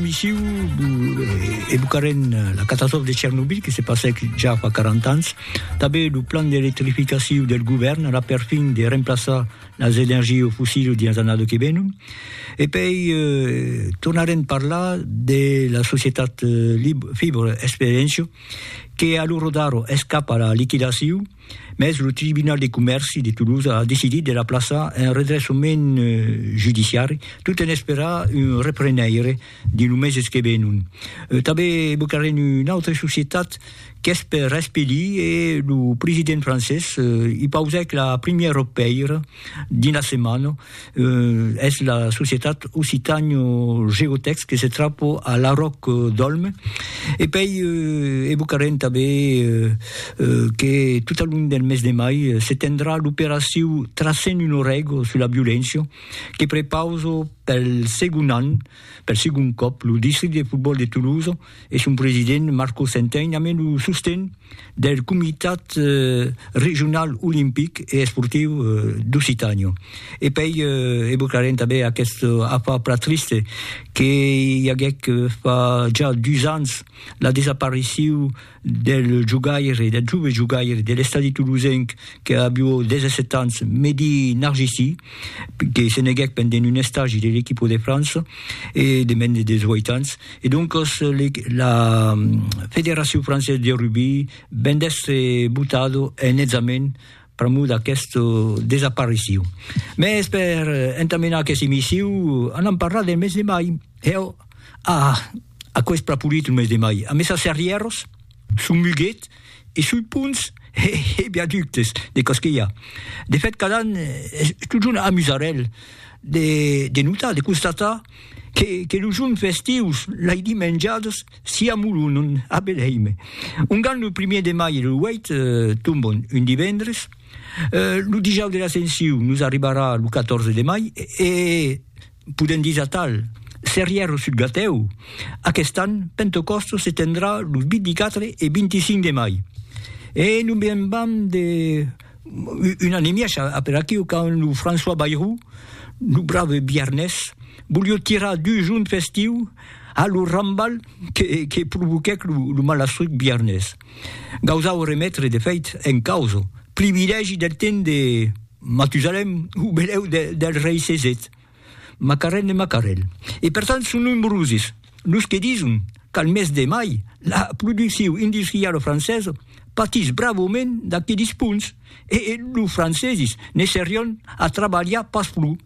Missiu evocarem la catastròfa de Chernobyl que se passèc ja fa 40 ans, tanben lo plan d'electrificaciu del govèrn ara per fin de remplaçar las energies fossiles dins las annadas que venon, e pei tornarem parlar de la societat Fibber Experientia que a lo rodar es cap a la liquidaciu. Mès lo Tribunal de Comèrci de Toulouse a decidit de la plaçar en redressament judiciari tot en esperar un reprenaire dins lo meses que venon. Tanben evocarem una autra societat qu'es per espelir e lo president francés i pausèc la primièra pèira Dins la setmana, es la societat Occitània Geotèx que se trapa a Laròc d'Òlme. E pei evocarem tanben que tot al long del mes de mai se tendrà l'operaciu Tracem un orego sus la violéncia que prepausa pel segon an, pel segon còp, lo districte de fotbòl de Tolosa, e son president Marco Centein amé lo sosten del Comitat Regional Olimpic e Esportiu d'Occitània. E pei evocarem tanben aquest afar plan triste que i aguèc fa ja dus ans la desapariciu del jogaire, del jove jogaire de l'Estadi Toulousenc que avió 17 ans, Mehdi Narjisi, que se neguèc pendent un estagi de l'equipo de França e de mens de 18 ans. E doncas la Federacion Française de Rugby ven d'èstre botado en hètzament pr'amor d'aquesta desaparicion. Mès per entamenar aquesta emission anam parlar del mes de mai. Heu, ah, aquò es pr'apolit lo mes de mai. Amessa Serrièros? Son muguet e sui ponts e viaductes de Castilla. De fèt, cada an es totjorn amusarèl de notar, de constatar que los jorns festius, lai dimenjadas, s'i amolonon a Belhèime. Ongan lo primièr de mai e lo 8 tombon un divendres, lo Dijòus de l'Ascensiu nos arribarà lo 14 de mai e, Podèm dire atal, Serrièr o sud Gatèu, aquest an, Pentecòstos se tendrà los 24 e 25 de mai. E non me'n vam de un an e mièg a per aquiu quand lo François Bayrou, lo brave biarnés, volió tirar dus joncs festius a lo rambal que provoquèc lo malastruc biarnés. Gausau remetre de fèit en causa, privilègi del temps de Matusalem o benèu del rei Cesèt, Macarèl de Macarèl. E per tant son nombrosis los que dison qu'al mes de mai la produccion industriala francesa patís bravament d'aquelis ponts e los francesis ne serián a trabalhar pas pro.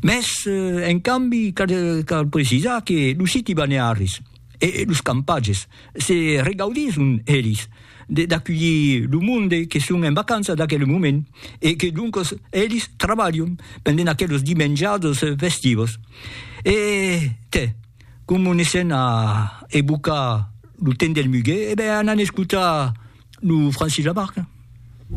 Mès en cambi cal precisar que los siti balnearis, e los campatges se regaudisson elis d'aculhir lo monde que son en vacança d'aquel moment e que doncos elis trabalhon pendent aquelos dimenjados festivos e tè como ne sèn a evocar lo temps del muguet e ben anan escotar lo Francis Lamarque.